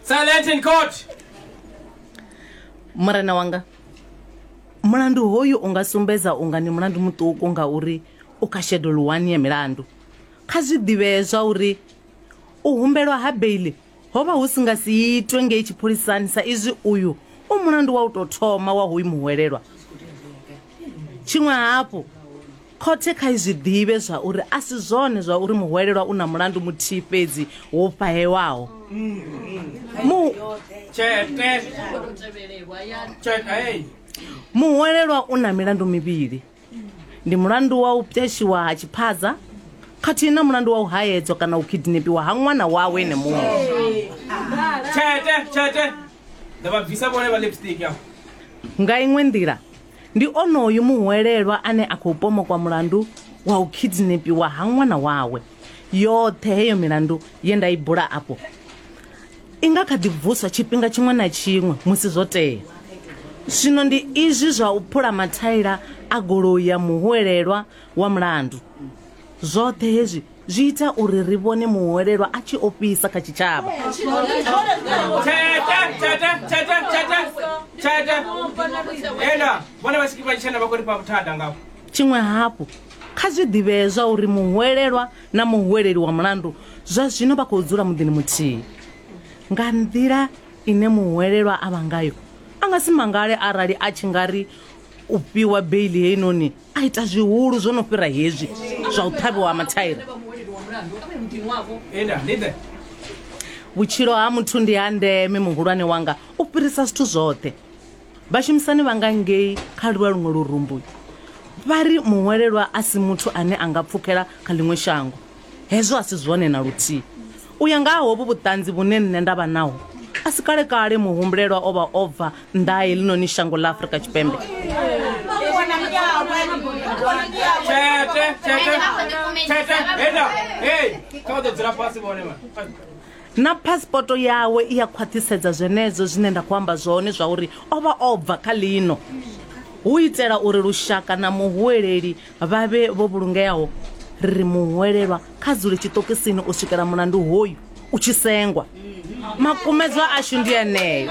Silent in court. murena wanga mulandu hoyu u nga sumbedza unga ni mulandu muṱuku ngauri u kha shedulu wani ya milandu kha zwi ḓivhee zwa uri u humbelwa ha beili Ho vha hu si nga si itwe ngei tshipholisani sa izwi uyu u mulandu wa u tou thoma wa hoyu muhwelelwa. Tshiṅwe hafhu, khothe kha i zwi ḓivhe zwa uri a si zwone zwa uri muhwelelwa u na mulandu muthihi fhedzi wo fhahewaho. Mu. Muhwelelwa u na milandu mivhili. ndi mulandu wa u pweshiwa ha tshiphaza khathihi na mulandu wa u haedzwa kana u kidnepiwa ha ṅwana wawe ene muṅwe tshete tshete nda vha bvisa vhone vha lipstick ya nga iṅwe nḓila ndi onoyu muhwelelwa ane a khou pomokwa mulandu wa u kidnepiwa ha ṅwana wawe yoṱhe heyo milandu ye nda i bula afho I nga kha ḓi vuswa tshifhinga tshiṅwe na tshiṅwe musi zwo tea. Zwino ndi izwi zwa u phula mathaila a goloi ya muhwelelwa wa mulandu. Zwoṱhe hezwi zwi ita uri ri vhone muhwelelwa a tshi ofhisa kha tshitshavha. Tshiṅwe hafhu, kha zwi ḓivhee zwauri muhwelelwa na muhuweleli wa mulandu zwa zwino vha khou dzula muḓini muthihi. Nga nḓila ine muhuwelelwa a vha ngayo, a nga si mangale arali a tshi nga ri u fhiwa beili heinoni a ita zwihulu zwo no fhira hezwi zwa u ṱhavhiwa ha mathaira. Vhutshilo ha muthu ndi ha ndeme, muhulwane wanga, u fhirisa zwithu zwoṱhe. Vhashumisani vha nga ngei kha lwa luṅwe lurumbu vha ri muhwelelwa a si muthu ane a nga pfukela kha ḽiṅwe shango. Hezwo a si zwone na luthihi. U ya nga ha hovhu vhuṱanzi vhune nṋe nda vha naho, a si kale-kale muhumbulelwa o vha o bva nnḓa ha heḽinoni shango ḽa Afrika Tshipembe. Tete, tete, tete, henda, hei, kha vha ḓo dzula fhasi vhone vha. Na phasipoto yawe i a khwaṱhisedza zwenezwo zwine nda khou amba zwone, zwauri o vha o bva kha ḽino, hu itela uri lushaka na muhuweleli vha vhe vho vhulungeaho. Ri ri muhuwelelwa kha dzule tshiṱokisini u swikela mulandu hoyu u tshi sengwa. Makumedzwa ashu ndi eneo.